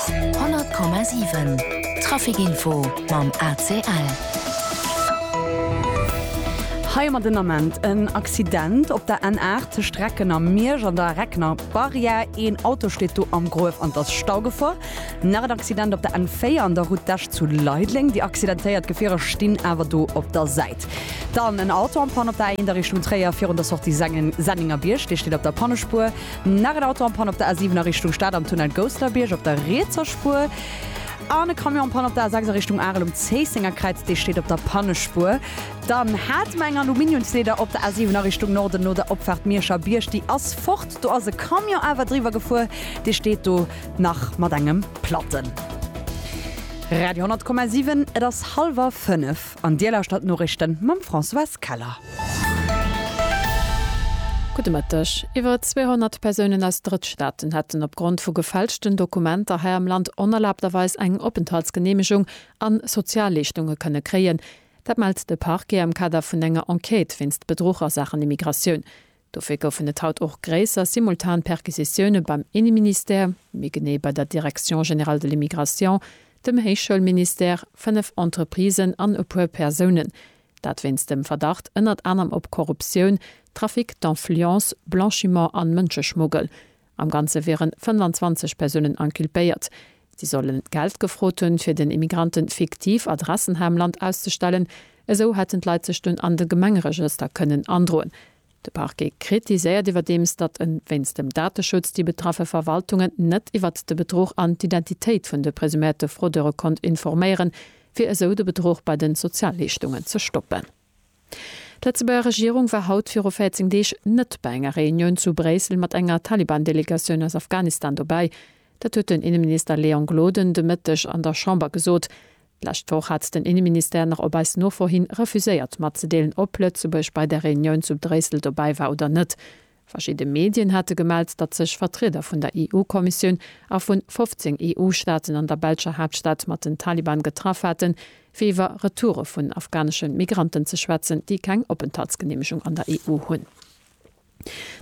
100,7 Trafic Info mam ACL. Hei mat den Ament, En Accident op der N8 tëscht Recken a Miersch an der Regner Barrière. Een Auto steet do am Gruef an et ass Staugefor. Nach en Accident op der N4 an der Route d'Esch zu Leideleng. Déi accidentéiert Gefierer stinn awer do op der Säit. Dann en Auto am Pann op der A1 a Richtung Tréier virun der Sortie Sengen, Senninger Bierg. Dee steet op der Pannespuer. Nach en Auto en Panne op der A7 a Richtung Stad am Tunnel Gousselerbiërg op der rietser Spuer. An e Camion en Panne op der A6 a Richtung Arel um Zéissenger Kräiz, dee steet op der Pannespuer. Dann hate mer eng Aluminiumsleeder op der A7 a Richtung Norden no der Opfaart Mierscher Bierg. Déi ass fort, do ass e Camion awer driwwer gefuer, dee steet do nach mat engem Platten. Radio 10,7 Et ass hallwer fënnef. An Dir lauschtert d'Noriichten mam Françoise Keller. Gudde Mëtteg. Iwwer 200 Persounen aus Drëttstaaten hätten opgrond vu gefälschten Dokumenter hei am Land onerlaabterweis eng Openthaltsgeneemegung an Sozialleeschtunge kënne kréien. Dat mellt de Parquet am Kader vun enger Enquête wéinst Bedruch a Saachen Immigratioun. Dofir goufen et haut och gréisser simultan Perquisitioune beim Inneministère, méi genee bei der Direction générale de l'immigration, dem Héichschoulministère, fënnef Entreprisen an e puer Persounen. Dat wéinst dem Verdacht ënnert anerem op Korruptioun, Trafic d'influence, Blanchiment an Mënscheschmuggel. Am Ganze wieren 25 Persounen inculpéiert. Si solle Geld gefrot hunn, fir den Immigranten fiktiv Adressen hei am Land auszestellen. Esou hätten d'Leit sech dunn an de Gemengeregëster kënnen androen. De Parquet kritiséiert iwwerdeems, datt e wéinst dem Dateschutz déi betraffe Verwaltungen net iwwert de Bedruch an d'Identitéit vun de presuméierte Fraudeure konnt informéieren, fir esou de Bedruch bei de Sozialleeschtungen ze stoppen. D'Lëtzebuerger Regierung war haut viru 14 Deeg net bei enger Reunioun zu Bréissel mat enger Taliban-Delegatioun aus Afghanistan dobäi. Dat huet den Inneminister Léon Gloden de Mëtteg an der Chamber gesot. D'lescht Woch hat den Inneministère nach op eis Nofro hin refuséiert matzedeelen, ob Lëtzebuerg bei der Reunioun zu Bréissel dobäi war oder net. Verschidde Medien hate gemellt, datt sech Vertrieder vun der EU-Kommissioun a vu 15 EU-Staaten an der belscher Haaptstad mat den Taliban getraff haten, fir iwwer Retoure vun afghanesche Migranten ze schwätzen, déi keng Openthaltsgeneemegung an der EU hunn.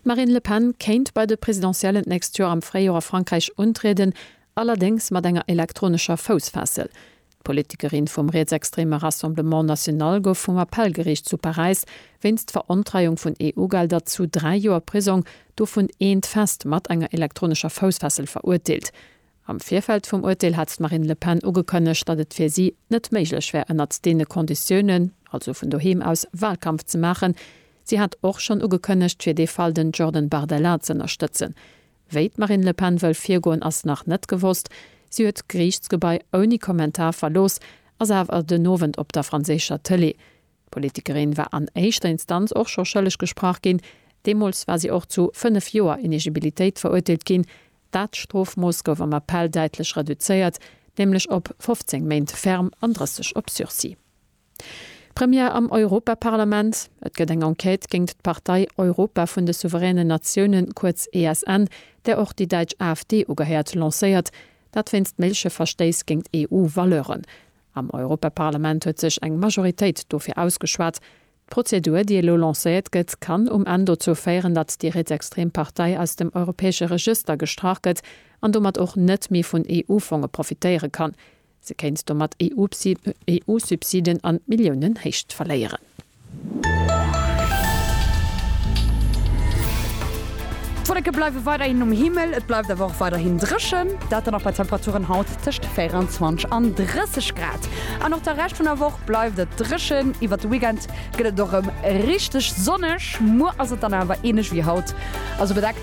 D'Marine Le Pen kéint bei de Presidentiellen d'nächst Joer am Fréijoer a Frankräich untrieden, allerdéngs mat enger elektronescher Foussfessel. D'Politikerin vum rietsextreme Rassemblement National gouf vum Appellgeriicht zu Paräis wéinst Verontreiung vun EU-Gelder zu dräi Joer Prisong, dovun eent fest, mat enger elektronescher Foussfessel verurteelt. Am Virfeld vum Urteel hat d'Marine Le Pen ugekënnegt, datt et fir si net méiglech wär ënnert deene Konditiounen, also vun doheem aus, Wahlkampf ze maachen. Si hat och schonn ugekënnegt, fir dee Fall den Jordan Bardella z'ënnerstëtzen. Wéi d'Marine Le Pen wëll virgoen, ass nach net gewosst. Si huet d'Geriichtsgebai ouni Kommentar verlooss, ass awer den Owend op der franséischer Tëlee. D'Politikerin war an éischter Instanz och scho schëlleg gesprach ginn. Deemools war si och zu fënnef Joer Inegibilitéit verurteelt ginn. Dat Strofmooss gouf am Appell däitlech reduzéiert, nämlech op 15 Méint ferm an 30 op Sursis. Première am Europaparlament, Et gëtt eng Enquête géingt d'Partei Europa vun de souveränen Natiounen, kuerz ESN, där och déi däitsch AfD ugehäert, lancéiert. Dat wéinst méigleche Verstéiss géingt EU-Valeuren. Am Europaparlament huet sech eng Majoritéit dofir ausgeschwat. D'Prozedur, déi elo lancéiert gëtt, kann um Enn dozou féieren, datt déi rietsextrem Partei aus dem europäesche Regëster gestrach gëtt an domat och net méi vun EU-Fonge profitéiere kann. Se kéint domat EU-Subsiden an Milliounenhéicht verléieren. D'Wolleke bleiwe weiderhin um Himmel, et bleift awer och weiderhin dréchen. Dat dann och bei Temperaturen haut tëscht 24 an 30 Grad. An och de Rescht vun der Woch bleift et dréchen. Iwwert de Weekend gëtt et och erëm richteg sonneg. Muer ass et dann awer änlech wéi haut, also bedeckt.